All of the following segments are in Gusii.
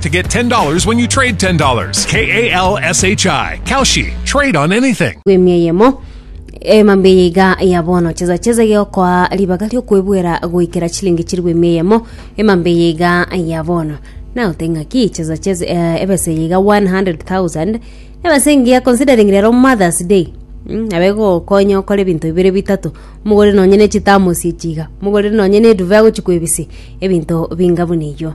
to get $10 when you trade $10. K A L S H I. Kalshi. Trade on anything. gwemia eyemo emambe eye iga ya bono cheza cheza geokoa ribaga riokwebwera goikera chilingi chiri gwemia eyemo emambe eye iga ya bono na oteng'aki cheza cheza eh, ebese eye iga 100000 ebese engiya considering rero mothers day Mm, abe gokonya okore ebinto bibere bitato mogore nonye ne chitamosi echiga mogore nonye ne eduve agochikwebisi ebinto binga buna eyio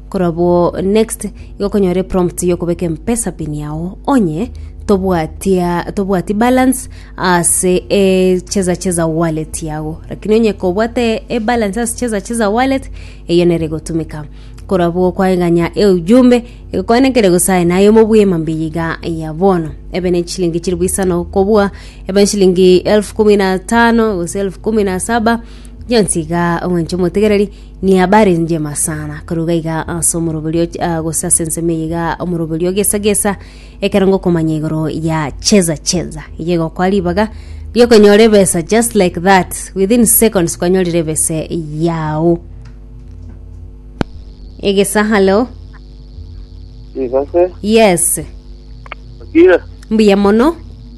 Korabwo next igo okonyora eprompt yokobeka empesa pin yao onye tobwatia tobwati balance ase e cheza cheza wallet yago lakini onye kobwate ebalance ase cheza cheza wallet eyo nere egotumeka korabwo kwaeganya eujumbe egokwanekire gose aye naye omobwema mbiya iga ya bono ebe ne chilingi chiri bwisano kobua ebe chilingi elfu kumi na tano gose elfu kumi na saba gionsi iga omwanche omotegereri Niabarengie masana korwa iga iga ase omoroberio, ah, gose ase ensemo eye iga omoroberio gesa gesa, ekero ngokomanya igoro ya cheza cheza, iga egokora ribaga riokonyora ebesa just like that within seconds kwanyorire ebesa yao. Egesa halo. Igase, Yes. okire, Mbuya mono.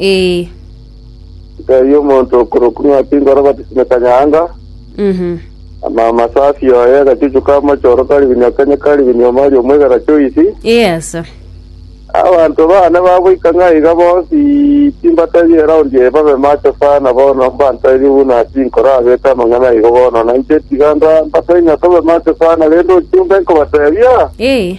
Ee. Nkaiyo omonto okorokwa Ng'ati ngoro batisime kanyanga, Mhm. ama amasafi oye agachuchu ka mochoro kari binywa kenye kari binywa omari omwegera choisi. Yes. Abanto bane bagoika ng'a iga bonsi timbatari eraundi eye babe macho sana bono mbantairi buna tinkoro abete amang'ana igo bono nainche tiga nda- mbatari ng'a tobe macho sana rende ochie ombe nkobatebia Ee.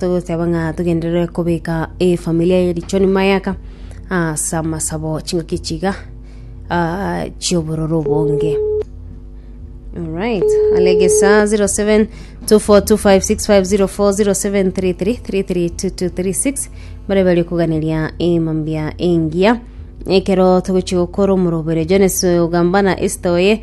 togoteba ng'a togenderere kobeka efamiri eye richo nyuma y'aka ase amasabo chingaki echi iga chi'obororo obonge. Alright, alegesa 07 24256504 0733 332236 bare bari kuganeria emambia engiya ekero togochi gokora omorobere Jones ogambana Esther oye